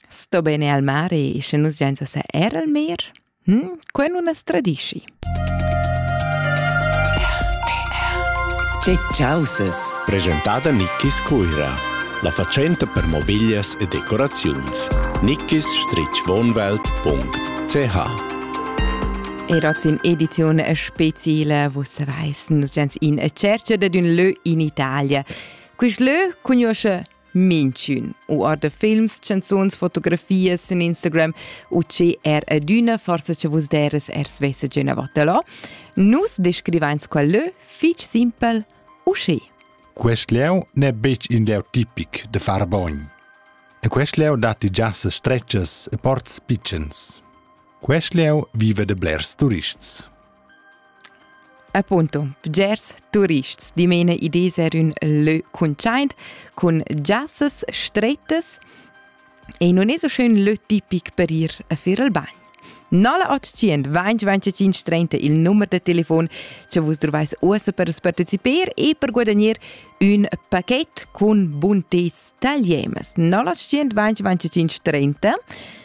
Sto bene al mare e sche nus giain sa er al mer? Hm? Quai nun as tradischi. Che chausas! Presentada Nickis Cuira, la fatschenta per mobiglias e decoraziuns. nickis-wohnwelt.ch Era in edizione speciale, wo se weiss, nus gens in a cerca dad un lö in Italia. Quist lö cugnuoscha Minchün u orda films, chanzuns, fotografias sün Instagram u che er adüna forsa cha vus deras er svessa giò na vattelò. Nus descrivains qual lö fich simpel usché. Quest lieu n'è betg in lieu tipic da far bogn. E quest lieu datti giassas stretgas e ports pitschens. Quest lieu vive da blers turists. Appunto, bgers turists dimena ides er ün lö cuntschaint cun giassas strettas e non es so schön lö tipic per ir a fer il bagn. 0800 2025 30 il numero de telefon che vus trovais uossa per partecipare e per guadagnare un paquet con buntez tagliemas 0800 2025 30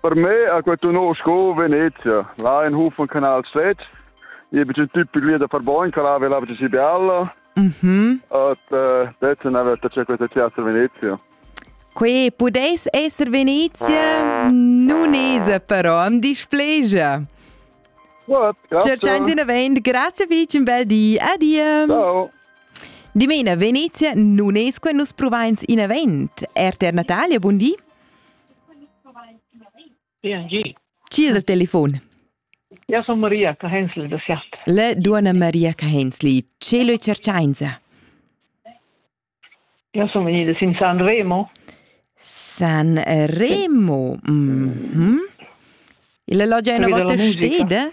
Per me ha quei no sco Venezia. Là in hof un canal svet. E be un typ piglia da far bon, che là vela ci si bella. Mhm. Et eh, detta na vetta c'è questa teatro Venezia. Qui pudeis esser Venezia? Nun esa però, am displegia. Gut, grazie. Cerchan di vend, grazie fich, un bel di. Adia. Ciao. Dimena, Venezia non esque nus provains in event. Er ter Natalia, buon di. Chi es al telefon? Eu sun Maria Cahenzli da Siat. La duonna Maria Cahenzli, che l'ho cerchainsa? Eu sun vegnida sin San Remo. San Remo? Mhm. Il alloggio è una volta steda?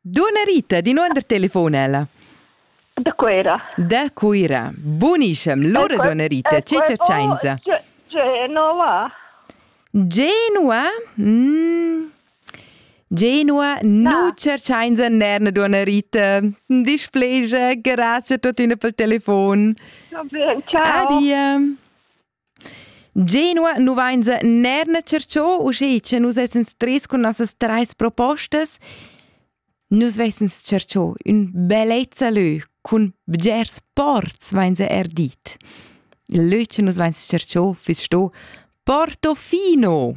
Dunna Rita, di nuonder telefon ella. Da Cuera. Da Cuera. Buniscem, lura ecco, dunna Rita, ecco, che cercenza? Oh, Genova. Genova? Mm. Genova, no. nu cercenza nerna dunna Rita. Displegia, grazie tuttina per il telefon. Va bene, ciao. Adia. Genua nu vainsa neir tschercho, uschè cha nus essans tres cun nossas trais propostas. Nus vessans tschercho ün bellezza lö cun bgers ports, vainsa eir dit. Il lö cha nus vains tschercho füss sto Portofino.